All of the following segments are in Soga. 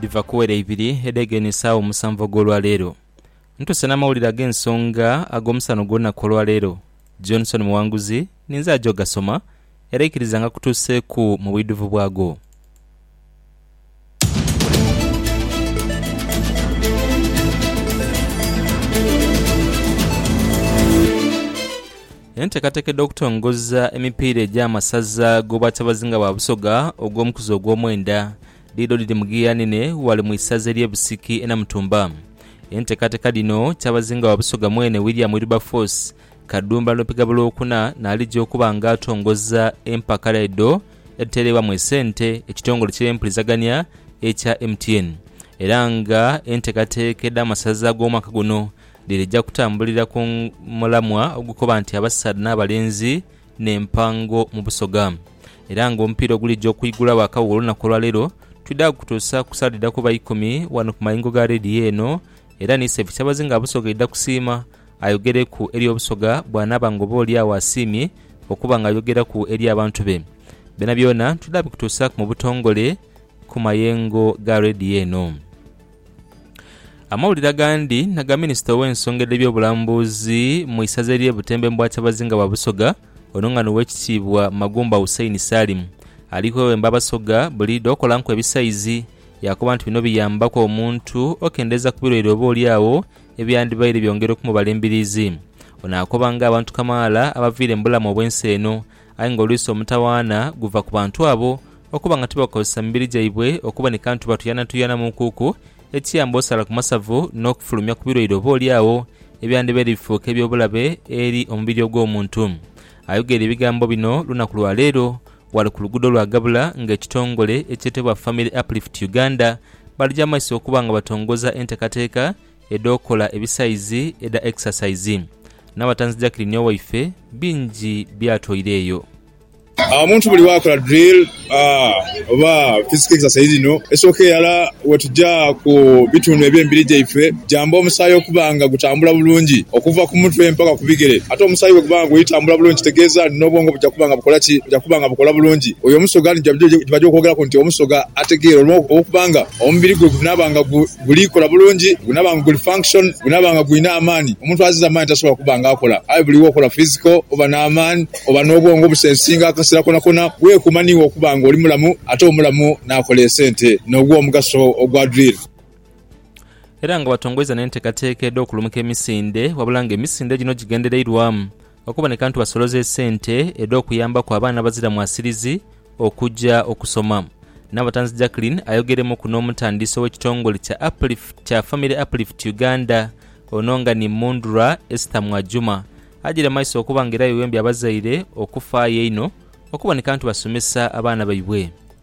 dhiva ku were ibiri edhegeine esaawa omusanvu ag'olwa leero. Ntuuse n'amawulire ag'ensonga ag'omusana ogw'olunaku olwa leero. Johnson Muwanguzi ninze aja ogasoma, era ikiriza ngakutuuseeku mu bwidhuvu bwago. Enteekateeka edh'okutongoza emipiira egy'amasaza g'Obwakyabazinga bwa Busoga ogw'omukuzi ogw'omwenda Dhidho dhiri mu giya nene ghale mu isaza ery'e Busiki e Namutumba. Enteekateeka dhino Kyabazinga wa Busoga mwene William Wilberforce Kadumba Nopigabo Lwokuna n'alija okuba nga atongoza empaka dhaidho edhitereebwamu esente ekitongole ky'empulizagania ekya MTN era nga enteekateeka edh'amasaza ag'omwaka guno dhirija kutambulira ku mulamwa ogukoba nti Abasaadha n'Abalenzi n'empango mu Busoga era nga omupiira ogulija okwigulagho akaghuulo olunaku olwaleero twidha kukutuusa ku sawa dhidha kuba ikumi ghano ku mayengo ga leediyo eno era ni Sefu Kyabazinga Busoga aidha kusiima ayogereku eri Obusoga bwanaaba nga oba olyagho asiimye okuba nga ayogeraku eri abantu be. Byonabyona twidha bikutuusaku mu butongole ku mayengo ga leediyo eno. Amawulire agandi aga minisita ow'ensonga edh'ebyobulambuzi mu isaza ery'e Butembo Embwa Kyabazinga wa Busoga ono nga n'Owekitiibwa Magumba Hussein Salim ali kwewemba Abasoga buliidho okolanku ebisaizi yaakoba nti bino biyambaku omuntu okendeeza ku birwaire oba olyagho ebyandibaire byongera okumubala embiriizi. Ono akoba ng'abantu kamaala abaviire mu bulamu obw'ensi eno Aye ng'olwisi omutawaana guva ku bantu abo okuba nga tibakozesa mibiri gyaibwe okuba ni kantu batuyanatuyana mu nkuuku, ekiyamba osala ku masavu n'okufulumya ku birwaire oboolyawo ebyandibaire bifuuka eby'obulabe eri omubiri ogw'omuntu. Ayogeire ebigambo bino lunaku lwa leero ghale ku luguudo lwa Gabula ng'ekitongole ekyetebwa Family Uplift Uganda balija mu maiso okuba nga batongoza enteekateeka edh'okola ebisaizi edha exercise, n'abatanzi Jacqueline Owaife bingi by'atwaireeyo. Omuntu buli bw'akola drill oba physical exercise dhino, esooka eghala wetuja ku bitundu eby'emibiri gyaife gyamba omusaayi okuba nga gutambula bulungi okuva ku mutwe mpaka ku bigere. Ate omusaayi bweguba nga guli tambula bulungi kitegeeza nti n'obwongo buja kuba nga bukola ki? Buja kuba nga bukola bulungi. Oyo omusoga nijo gyebaja okwogeraku nti omusoga ategeera olwokuba nga omubiri gwe gunaaba nga gu. Guli kola bulungi, gunaba nga guli function, gunaba nga gulina amaani. Omuntu azize amaani tasobola kuba nga akola. Aye buli wokola physical, oba n'amaani, oba n'obwongo obusensinga akasera konakona. Wekuuma niiwe okuba nga oli mulamu, ate omulamu n'akola esente, n'ogwa omugaso ogwa drill. Era nga batongoiza n'enteekateeka edh'okulumuka emisinde, wabula nga emisinde gino gigendereirwamu Okuboneka nti basoloza esente edh'okuyambaku abaana abazira mwasirizi okuja okusoma. Nabatanzi Jacqueline ayogeremuku n'omutandisi ow'ekitongole kya Uplift kya Family Uplift Uganda ono nga ni Mundhra Esther Mwajuma ajaire mumaiso okuba nga era yewembye abazaire okufaayo einho okuboneka nti basomesa abaana baibwe.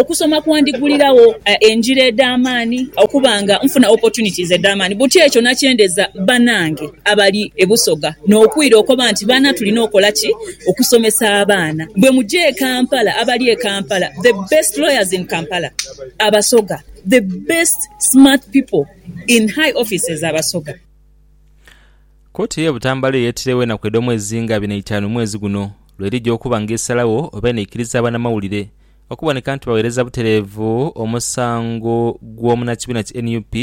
Okusoma kwandiguliragho engira edh'amaani, okuba nga nfuna opportunities edh'amaani. Buti ekyo nakyendeza banange abali e Busoga n'okwira okoba nti baana tulina okola ki? Okusomesa abaana. Bwemuja e Kampala, abali e Kampala, the best lawyers in Kampala Abasoga, the best smart people in high offices Abasoga. Kooti ye Butambala eyeetirewo enaku edh'omwezi nga abiri n'eitaanu mwezi guno lwerija okuba nga esalagho oba enaikiriza abanamawulire okuboneka nti bawereza butereevu omusango gw'omunakibiina ki nup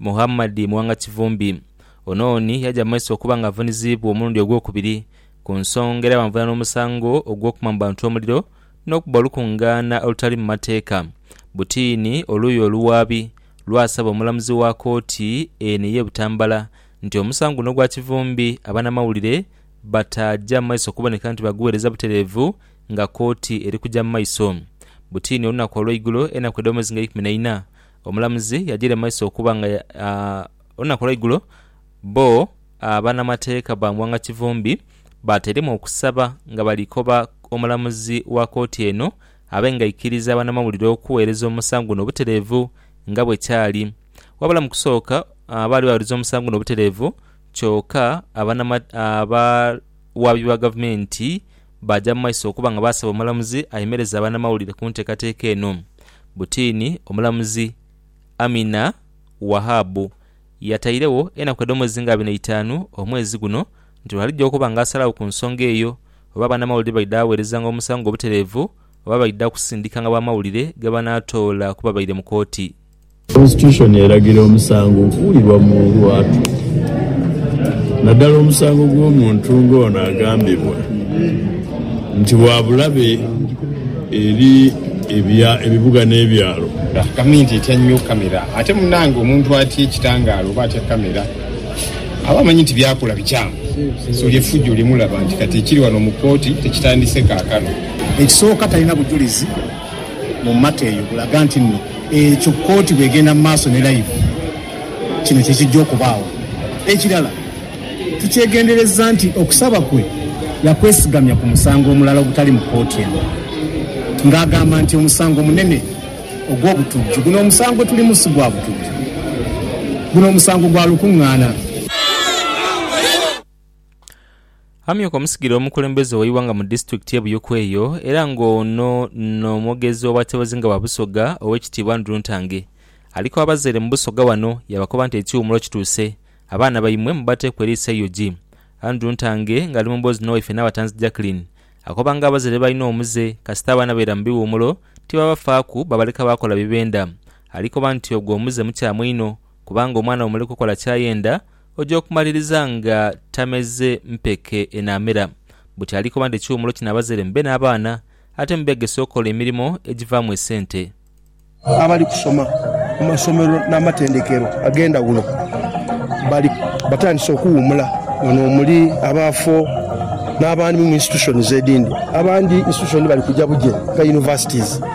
Muhammad Muwanga Kivumbi. Ono ni yaja mu maiso okuba nga avuniziibwa omulundi ogwokubiri ku nsonga era bamuvunaana omusango ogw'okuma mu bantu omuliro n'okuba olukungaana olutali mu mateeka butiini oluuyi oluwaabi lwasaba omulamuzi wa kooti eno eye Butambala nti omusango guno gwa kivumbi abanamawulire bataaja mu maiso kuboneka nti baguweereza butereevu nga kooti eri kuja mu maiso. Butiini olunaku olweigulo enaku edh'omwezi nga eikumi na ina, omulamuzi yajaire mu maiso okuba nga olunaku olweigulo bo banamateeka ba Muwanga Kivumbi baatairemu okusaba nga bali koba omulamuzi wa kooti eno abe nga aikiriza abanamawulire okuweereza omusango guno obutereevu nga bwekyali. Wabula mu kusooka baali baghuluza omusango guno obutereevu kyoka abawaabi ba gavumenti baaja mu maiso okuba nga baasaba omulamuzi ayemereze abanamawulire ku nteekateeka eno. Butiini omulamuzi Amina Wahabu yatairegho enaku edh'omwezi nga abiri n'eitaanu omwezi guno nti lwalija okuba nga asalagho ku nsonga eyo oba abanamawulire baidha ghawerezanga omusango guno obutereevu oba baidha kusindikanga bamawulire gebanaatoola ku babaire mu kooti. Konsitushoni eragira omusango okuwulirwa mu lwatu, naddala omusango gw'omuntu ng'ono agambibwa nti wa bulabe eri ebibuga n'ebyalo. Gavumenti etya nnyo kkamera ate munnange omuntu atya ekitangaala oba atya kkamera aba amanyi nti by'akola bikyamu so lye ffujjo lye mulaba nti kati ekiri wano mu kkooti tekitandise kaakano. Ekisooka talina bujulizi. mu mata eyo bulaga nti nno ekyo kkooti bw'egenda mu maaso ne layivu, kino kye kijja okubaawo. Ekirala, tukyegenderezza nti okusaba kwe yakwesigamya ku musango omulala ogutali mu kkooti eno ng'agamba nti omusango munene ogw'obutujju. Guno omusango gwe tulimu si gwa butujju. Guno omusango gwa lukungaana. Amyuka omusigire omukulembeze owe ighanga mu disitulikiti ye Buyuku eyo era nga ono no mwogezi owa kyabazinga wa Busoga owekitiibwa Andrew Ntange aliku abazaire mu Busoga wano yabakoba nti ekiwumulo kituuse abaana baimwe mubateeku eriiso eug Andrew Ntange nga ali mu mboozi nowaife Nabatanzi Jacqueline akoba nga abazaire balina omuze kasita abaana baira mu biwumulo tibabafaaku babaleka bakola bibenda alikoba nti ogwo omuze mukyamu inho kubanga omwana bwomuleka okola kyayenda Oja okumaliriza nga tameze mpeke enaamera. Buti ali koba nti ekiwumulo kinaabazere mube n'abaana ate mubeegese okola emirimo egivaamu esente. Abali kusoma mu masomero n'amatendekero ag'endhawulo bali batandise okuwumula. Bano omuli abaafo n'abandi mu institutions edindi. Abandi institution bali kuja buje nga universities.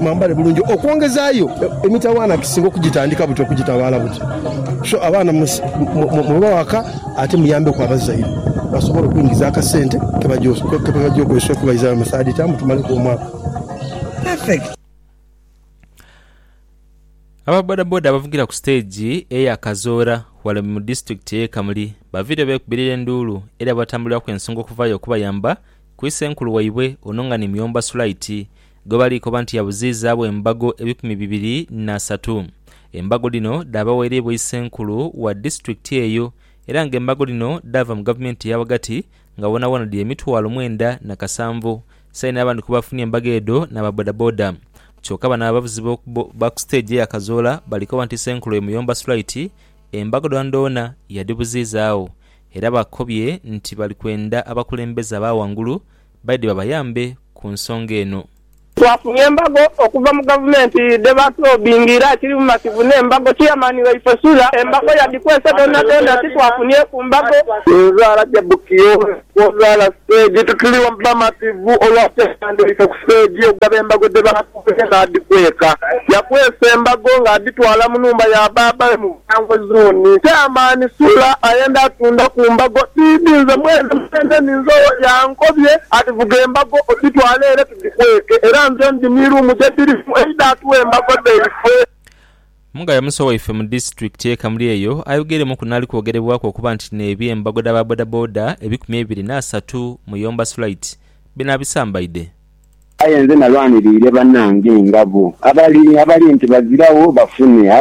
Mwambale bulungi okwongezaayo emitawaana kisinga okugitandika buti okugitawaala buti. So abaana mubawe aka ate muyambeku abazaire basobole okuingiza akasente kebaja okozesa okubaizayo mu third term tumaleku omwaka. Aba bodaboda abavugira ku siteegi eya Kazoora ghale mu disitulikiti ey'e Kamuli baviire beekubirira enduulu eri abatambuliraku ensonga okuvayo okubayamba ku isenkulu waibwe ono nga ni Muyomba Sulaiti gwe bali koba nti yabuziizaagho embago ebikumi bibiri n'asatu. Embago dhino dhaabaweereibwa Isenkulu wa disiturikiti eyo era nga embago dhino dhaava mu gavumenti eya ghagati nga woonawoona dhiri emitwalo mwenda na kasanvu. Saini n'abandi ku baafunye embago edho n'aba bodaboda. Kyoka bano abavuzi ba ku siteegi eya Kazoola bali koba nti Isenkulu oyo muyomba sulaiti, embago dhoonadhoona yadhibuziizaagho era bakobye nti bali kwenda abakulembeze aba ghangulu baidhe babayambe ku nsonga eno. Twafunye embago okuva mu gavumenti dhe batulobinga era kiri bumativu n'embago, Chairman waife Sula. Embago yadhikwese dhonadhona titwafunieku mbago. Ninza Rajabu Kiyobe Kwozaala Stage, Tuli bamativu olwa Chairman waife ku stage okugaba embago dhe batulobinga. Omusaadha oyo n'adhikweka, yakwesa embago ng'adhitwala mu nhumba ya baabawe mu Buyangwe Zooni. Chairman Sula ayenda atunda ku mbago dhidhi nze mwene mwene ninze owo yankobye ati vuga embago odhitwale ere tudhikweke era nze ndi ni room gye dhiri mu eidha atuwe embago dhaifwe. Mugayo Musa owaife mu disitulikiti y'e Kamuli eyo ayogeremuku n'ali kwogerebwaku okuba nti n'ebye mbago dha ba bodaboda ebikumi ebiri n'asatu, Muyomba Sulait, binabisambaidhe. Aye nze nalwaniriire banange nga bo abali abali nti baziragho bafune,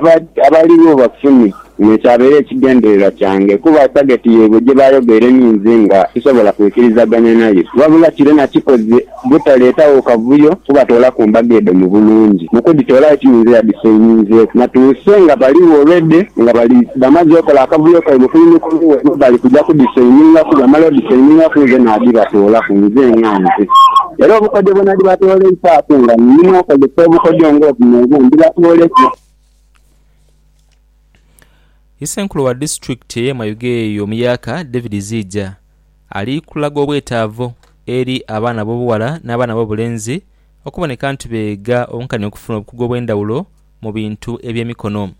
abaligho bafune. Kino kyabeera ekigendererwa kyange kuba tageti yaibwe gye baayogere ni nze nga sisobola kwikirizaganya nayo. Wabula kiro nakikoze butaleetagho kavuyo kubatoolaku mbago edho mu bulungi. Mu kudhitoolayo tiyinze yadhisayininzeeku natuuse nga baligho already nga bali bamaze okola akavuyo kaibwe kuli ni kuli webali kuja kudhisayiningaku. Bwebamala odhisayiningaku nze nadhibatoolaku nze nga. obutuukirivu. Era obukodyo bwe nadibatooleisaaku nga nimwokozesa obukodyo ng'obuno obu, ndibatoola ekibonerezo. Isenkulu wa disitulikiti eye Mayuge eyo omuyaka David Ziija ali kulaga obwetaavu eri abaana abobughala n'abaana abobulenzi okuboneka nti beega obunkania okufuna obukugu obwendhawulo mu bintu ebyemikono.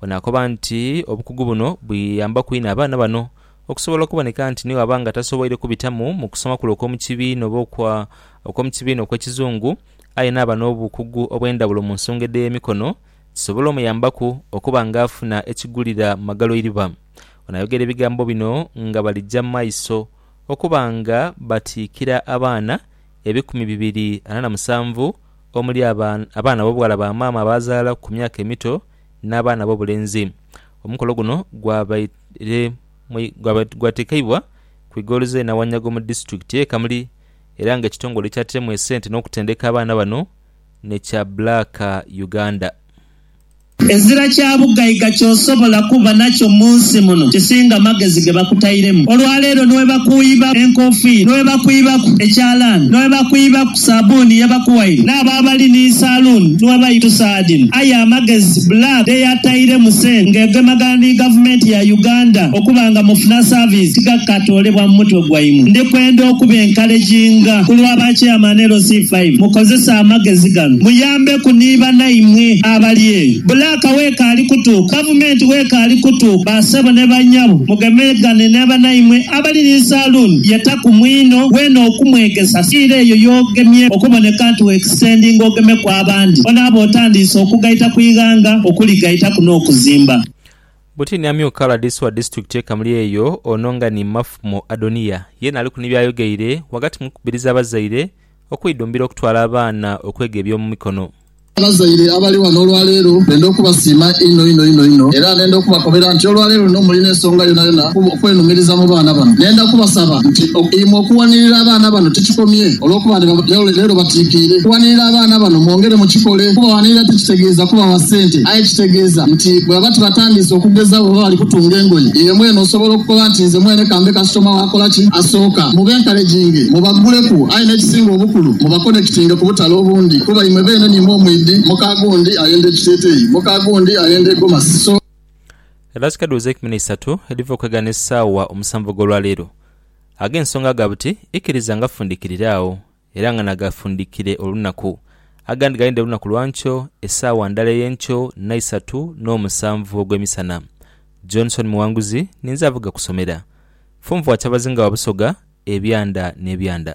Ono akoba nti obukugu buno buyambaku inho abaana bano Okusobola okuboneka nti ni bw'aba nga tasoboire kubitamu mu kusoma kule okw'omu kibiina oba okwa okw'omu kibiina okw'ekizungu, aye naaba n'obukugu obw'endhawulo mu nsonga edh'emikono, kisobola omuyambaku okuba nga afuna ekigulira mu magaloiriba. Ono ayogera ebigambo bino nga balija mu maiso okuba nga batiikira abaana ebikumi bibiri ana na musanvu omuli aba abaana b'obughala ba maama abaazaala ku myaka emito n'abaana b'obulenzi. Omukolo guno gwabai. Re Mwei gwatekeibwa ku igoloza e Nawanyago mu disitulikiti ye Kamuli era nga ekitongole ekyatiremu esente n'okutendeka abaana bano ni kya Black Uganda. Ezira kya bugaiga kyosobola kuba nakyo munsi muno kisinga magezi gebakutairemu. Olwaleero niwebakughiba enkofiira, niwebakwibaku ekyalaani, niwebakwibaku. Saabuni ye bakuwaire n'abo abali ni saluuni ni we baita saadini. Aye amagezi Black dhe yatairemu sente nga egemagana ni Gavumenti ya Uganda okuba nga mufuna saviisi tigakatoolebwa mu mutwe gwaimwe. Ndi kwenda okubenkaleginga ku lwa ba Chairman LC five mukozese amagezi gano muyambeku ni banaimwe abali eyo. Black w'ekaali kutuuka, Gavumenti w'ekaali kutuuka, ba ssebo ne bannyabo mugemegane ni banaimwe. Abali ni saloon yetaku mwinho wena okumwegesa siira eyo yogemye okuboneka nti wextendinga ogemeku abandi onaaba otandiise okugaita ku ighanga okuli gaitaku n'okuzimba. Buti ni amyuka rdc wa disitulikiti ye Kamuli eyo ono nga ni Mafmo Adoniya yeena aliku ni byayogeire wagati mu kukubiriza abazaire okwidhumbira okutwala abaana okwega eby'omumikono. Abazaire abali ghano olwaleero ndenda okubasiima inho inho inho inho era ndenda okubakobera nti olwaleero luno mulina ensonga yonayona okwenumiriza mu baana bano. Ndenda kubasaba nti imwe okuwanirira abaana bano tikikomye olwokuba nti leero batikiire. Okuwanirira abaana bano mwongere mukikole kuba wanirira tikitegeeza kubawa sente aye kitegeeza nti bwebaba tibatandiise okugeza bwebaba bali kutunga engoye iwe mwene osobola okukoba nti nze mwene kambe kasitoma wakola ki asooka. Mubenkareginge, mubaguleku aye n'ekisinga obukulu mubakonekitinge ku Kale obundi, kuba imwe beene ni mwo mwidhi, muka gundi ayenda ekiteeteeyi, muka gundi ayenda egomasi, so. Era kika duuza eikumi n'eisatu edhiva okwegana esaawa omusanvu ogw'olwa leero. Ago ensonga ga buti ikiriza nga fundikirire agho, era nga nagafundikire olunaku. Agandi galinde lunaku lwa nkyo, esaawa ndala ey'enkyo n'eisatu n'omusanvu ogw'emisana. Johnson Muwanguzi ninze avuga kusomera. Funvu wa Kyabazinga wa Busoga, ebyanda n'ebyanda.